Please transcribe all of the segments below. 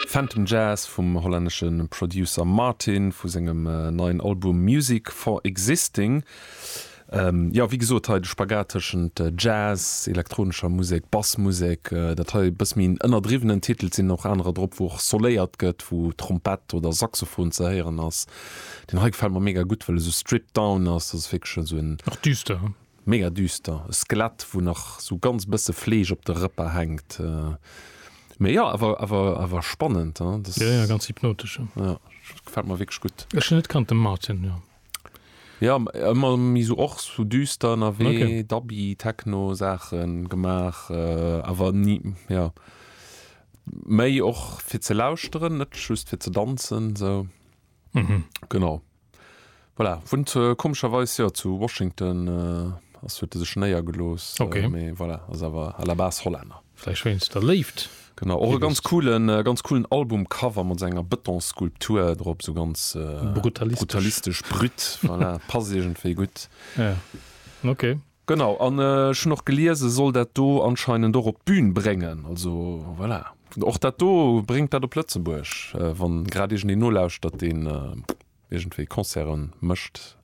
Phantom Jazz vum hollännesche Producer Martin vu sengem neien Album Music for Existing. Jo, wéi gesot, hei de Spagat tëschent Jazz, elektronescher Musek, Bassmusek. Dat hei e bësse méi en ënnerdriwwenen Titel. Et sinn och anerer drop, wou och soléiert gëtt, wou Trompett oder Saxophon ze héieren ass. Deen hei gefält mer mega gutt, well e sou stripped down ass. Dat ass wierklech esou en. Och düster. Mega düster, e Skelett wou nach sou ganz bësse Fleesch op de Rëpper hänkt, mee jo awer awer awer spannend hein das. Jo jo ganz hypnotesch jo. Jo gefällt mer wierklech gutt. Ech hunn net kannt den Martin jo. Jo ëmmer méi sou och sou düster ënnerwee, Dubby, Techno Saachen gemaach awer ni jo méi och fir ze lauschteren net just fir ze danzen sou genau. Voilà, wunnt komescherweis jo zu Washington, ass huet e sech néiergelooss, mee voilà, ass awer à la base Hollänner. Vläicht wéinst der Léift. Genau, och e ganz coolen, ganz coolen Albumcover mat enger Betonskulptur drop, esou ganz brutalistesch, brut, voilà, passt iergendwéi gutt. Ja, ok. Genau, an ech hunn och gelies, e soll dat do anscheinend och op d'Bün bréngen. Also voilà, och dat do, bréngt dat op Lëtzebuerg, wann grad iergendeen nolauschtert, deen iergendwéi Concerte mécht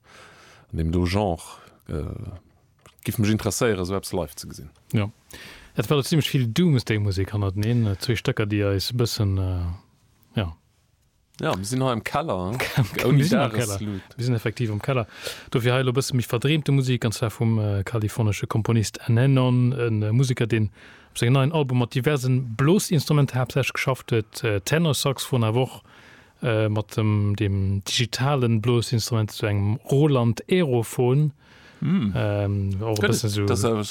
an deem do Genre. Et géif mech interesséieren, esou eppes live ze gesinn. Jo, et war do zimmlech vill Doomsday-Musek hannerteneen, zwee Stécker, déi eis e bëssen, jo. Ja, mir sinn hei am Keller. Ouni Dagesluut. Mir sinn effektiv am Keller. Dofir hei elo e bësse méi verdreemte Musek, an zwar vum kalifornesche Komponist N-Anon, e Museker, deen op sengem neien Album mat diverse Blosinstrumenter haaptsächlech geschafft huet, Tenorsaxophon, awer och mat dem digitale Blosinstrument, esou engem Roland Aerophone.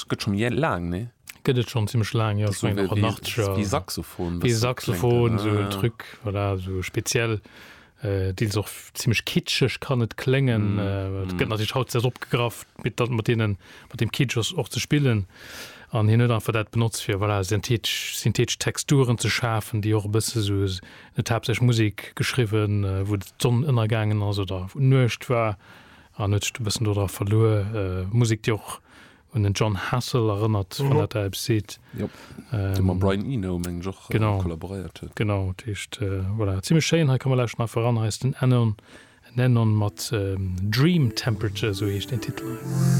gëtt schon je laang ne gëtt et schon ziemlich laang ja so wie saxophon wie saxophon so drück voilà so speziell äh, deels och ziemlich kitschech kann net klengen mm. äh, mm. gëtt natürlich haut sehr opgegraff mit dat mat denen mat dem Kitschers och ze spillen an hin net einfach dat benutzt fir voilà synthetisch synthetisch Texturen ze schafen die och bësse so net hab sech Musik geschrieben äh, wo d'Sonn ënnergangen also da nuecht war An huet sech do e bëssen dodra verluer. Musek, déi och un den Jon Hassell erënnert, wann dat der eppes seet. Jop, dee mam Brian Eno, meng ech, och kollaboréiert huet. Genau, dat heescht, voilà, zimmlech schéin. Hei ka mer lauschteren. A fir eran hei ass den Ennon, Ennon mat Dream Temperature, esou heescht deen Titel hei.